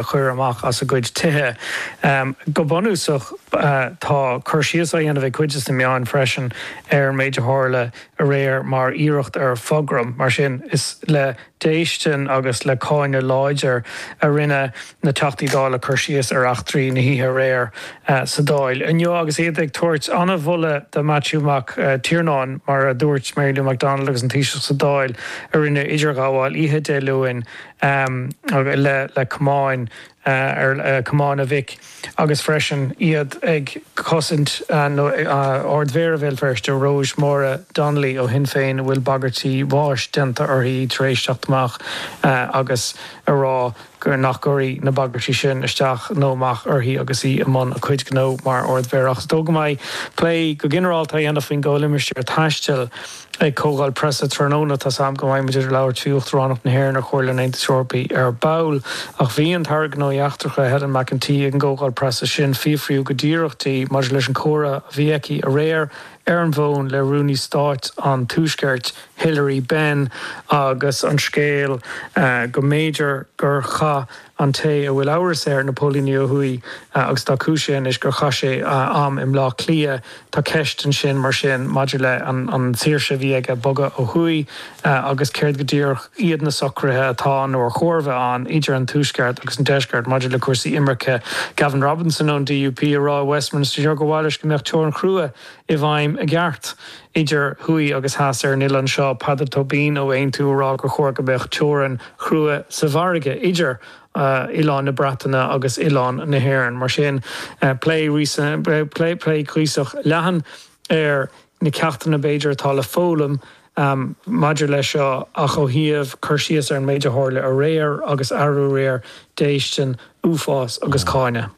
a chur amach as a gcuid tithe. Go bunúsach tá cur síos á dhéanamh ag cuid de na meáin freisin ar an méid a tharla aréir mar iarracht ar phogram. Mar sin is le déistean agus le cáineadh láidir a rinne na Teachtaí Dála cur síos ar eachtraí na hoíche aréir sa Dáil inniu agus iad ag tabhairt an-mholadh do Mhaitiú Mac Tiarnáin. Mar a dúirt Mary Lou McDonald agus an Taoiseach sa Dáil a rinne idirghabháil oíche Dé Luain, le camán camán a mhic agus freisin iad ag cosaint Ard Mhéara Bhéal Feirste Róis Máire Donnelly ó Shinn Féin a bhfuil bagairtí bháis déanta uirthi tar éis teacht amach agus a rá nach gcuirfidh na bagairtí sin isteach nó amach uirthi agus í i mbun a cuid gnó mar Ard Mhéara. Ach is dóigh go mbeidh plé go ginearálta á dhéanamh faoin gComhlimistéar Taistil, Ag Comhdháil Preasa tráthnóna tá a fhios agam go mbeidh muid ag labhairt faoi Uachtaránacht na hÉireann ar Chomhairle an Aontais Eorpaigh ar ball. Ach bhí an tAire Gnóthaí Eachtracha, Helen McEntee, ag an gcomhdháil preasa sin fiafraíodh go díreach di maidir leis an chomhrá a bhí aici aréir ar an bhfón le Rúnaí Stáit an Tuaiscirt, Hilary Benn agus an scéal go mb'fhéidir gur chaith. an té a bhfuil amhras ar na póilíní ó thuaidh agus tá cúisithe anois gur chaith sé am i mBleá Cliath. Tá ceist ansin mar sin maidir le an tsaoirse a bhí aige bogadh ó thuaidh agus céard go díreach iad na socruithe atá nó ar chóir a bheith ann idir an tuaisceart agus an deisceart maidir le cúrsaí imirce. Gavin Robinson ón DUP ag rá i Westminster inniu gur mhaith leis go mbeadh teorainn chrua i bhfeidhm i gceart. Idir thuaidh agus theas ar an oileán seo, Peadar Tóibín ó Aontú ag rá gur chóir go mbeadh teorainn chrua sa bhfarraige idir oileáin na Breataine agus oileán na hÉireann. Mar sin, plé cuíosach leathan ar na ceachtanna, b'fhéidir, atá le foghlaim maidir leis seo ach ó thaobh cur síos ar an méid a tharla aréir agus arú aréir, déistin, uafás agus cáineadh.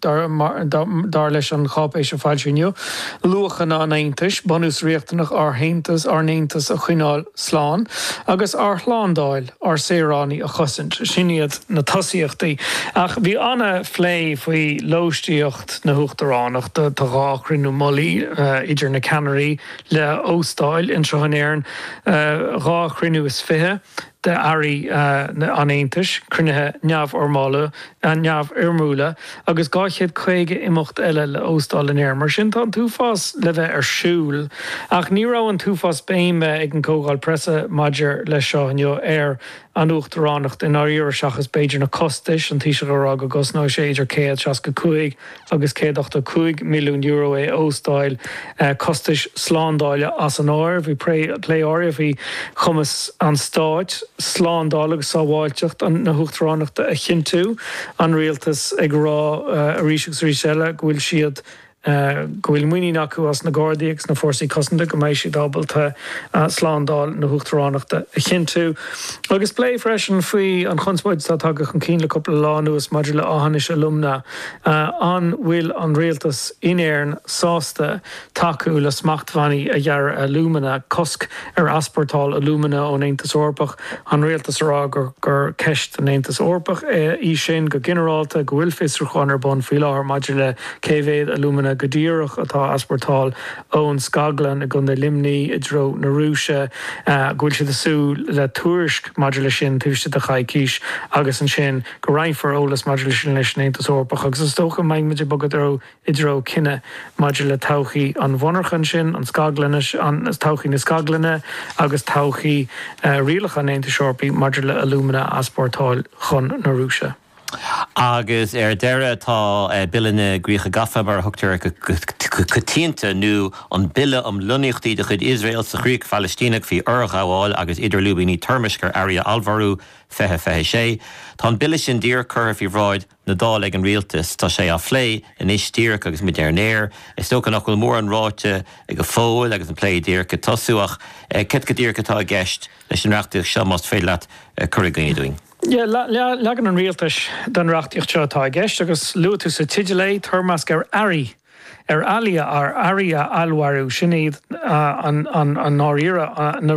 Dar leis an cháipéis a foilsíodh inniu, luachanna an Aontais, bunús riachtanach ár haontais, ár n-aontas a choinneáil slán agus ar shlándáil ár saoránaigh a chosaint, sin iad na tosaíochtaí. Ach bhí an-phlé faoi lóistíocht na huachtaránachta. Tá dhá chruinniú mullaigh idir na ceannairí le óstáil anseo in Éirinn, dhá chruinniú is fiche. d'Airí an Aontais, cruinnithe neamhfhoirmiúla agus 250 imeacht eile le óstáil in Éirinn. Mar sin tá an t-uafás le bheith ar siúl, ach ní raibh an t-uafás béime ag an gcomhdháil preasa maidir leis seo inniu ar an Uachtaránacht i ndáiríre seachas b'fhéidir na costais, an Taoiseach ag rá go gcosnóidh sé idir 165 agus €185 milliún é óstáil, costais slándála as an áireamh. Bhí plé áirithe faoi chumas an Stáit slándáil agus sábháilteacht na hUachtaránachta a chinntiú, an Rialtas ag rá arís agus arís eile go bhfuil siad, go bhfuil muinín acu as na Gardaí agus na Fórsaí Cosanta go mbeidh siad ábalta slándáil na hUachtaránachta a chinntiú. Agus plé freisin faoi an chonspóid atá tagtha chun cinn le cúpla lá anuas maidir le Aughinish Alumina. An bhfuil an rialtas in Éirinn sásta tacú le smachtbhannaí a ghearradh ar alúmana, cosc ar easpórtáil alúmana ón Aontas Eorpach, an rialtas ag rá gur ceist don Aontas Eorpach í sin go ginearálta, go bhfuil fiosrúchán ar bun faoi láthair maidir le cé mhéad alúmana go díreach atá á easpórtáil ón scaglann i gContae Luimnigh i dtreo na Rúise, go bhfuil siad ag súil le tuairisc maidir leis sin taobh istigh de choicís agus ansin. go roinnfear eolas maidir leis sin leis an Aontas Eorpach agus is dócha go mbeidh muid ag bogadh i dtreo cinneadh maidir le todhchaí an mhonarcha ansin, an scaglann, todhchaí na scaglainne agus todhchaí rialacha an Aontais Eorpaigh maidir le alúmana a easpórtáil chun na Rúise. Agus ar deireadh tá Bille na gCríoch Gafa, mar a thugtar air go coitianta, nó an Bille um Lonnaíochtaí de chuid Iosrael sa Chríoch Phalaistíneach faoi fhorghabháil agus idir lúibíní toirmeasc ar earraí a allmhairiú 2026. Tá an Bille sin díreach curtha faoi bhráid na Dála ag an Rialtas. Tá sé á phlé anois díreach agus muid ar an aer. Is dócha nach bhfuil mórán ráite go fóill agus an plé díreach ag tosú ach céard go díreach atá i gceist leis an reachtaíocht seo más féidir leat cur i gcuimhne dúinn? Leagan an Rialtais den reachtaíocht seo atá i gceist agus luaigh tú sa teideal é, toirmeasc ar earraí ar earraí a allmhairiú, sin iad i ndáiríre na.